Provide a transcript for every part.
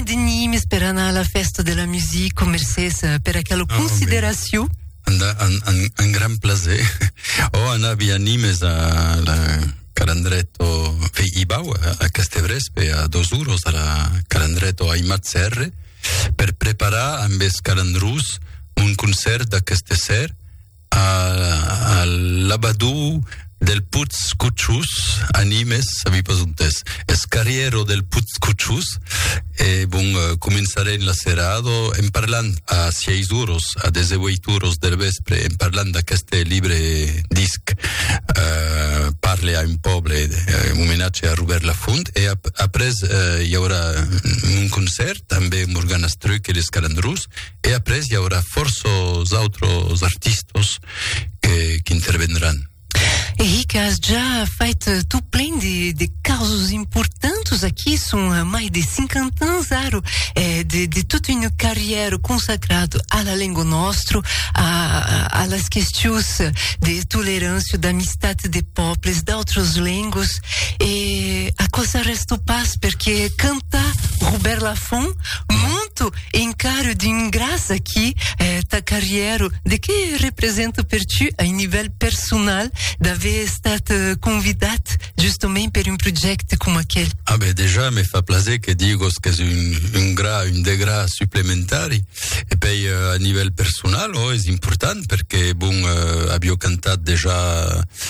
Denis, per anar a la fèsta de la music, mercés per aquela consideracion. Un gran plaser. Oh, anavi a Nimes a la Calandreto Ibau, a Castebrespe, a dos uros a la Calandreto Aimat Serre, per preparar amb es calandrós un concèrt d'aqueste ser, a l'abadou del Putz Cotchous, a Nimes, a mi pas ont es. Es carrièro del Putz Cotchous, e bon, començarem la serada en parlant a sièis oros, a dese ueit oros der vèspre, en parlant d'aqueste libre disc, Parle a un pòble, un omenatge a Robèrt Lafont, e après i aurà un concèrt, ambé Morgana Struck e les Calandrous. e après i aurà fòrça d'autres artistas que, que intervendràn. Eric, has ja fait tot plein de, de casos importants aquí, son mai de 50 ans ara, eh, de, de tota una carriera consacrada a la lengua nostra, a, a las questions de tolerància, d'amistat de pobles, d'autres lengues, e a cosa resta pas, perquè canta Robert Lafont, monto Encara d'un gras aquí ta carrièra, de qué representa per tu a un nivèl personal d'aver estat convidat justament per un projècte coma aquel? A ben dejà me fa plaser que digos qu'es un gra, un degrà suplementari. E pei a nivèl personal, ò, es important perque bon avió cantat dejà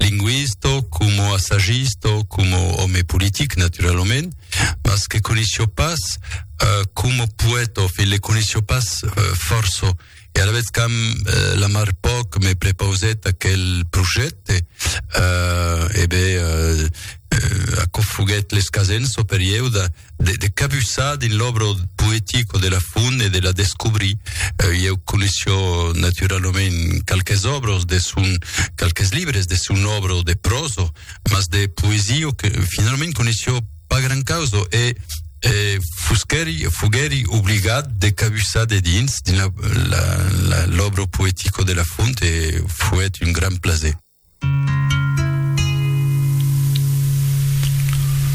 linguista, coma assagista, coma òme politic, naturalament, mas que coneishió pas euh, coma poèta, fin le coneishió pas euh, fòrça. E alavetz qu'am euh, la mar pòc me prepausèt aquel projècte, euh, e ben, euh, euh, aquò foguèt l'escasenço per ieu de, de, de cabussar dins l'obra poetica de la Font e de la descobrir. Uh, eh, eu coneisho naturalament quelques obres de son, quelques libres de son obra de prosa, mas de poesia que finalment coneisho pas gran causa e eh, eh, fosqueri, fogueri obligat de cabussar de dins, dins l'obra poetica de la Font e foguet un gran plaisir.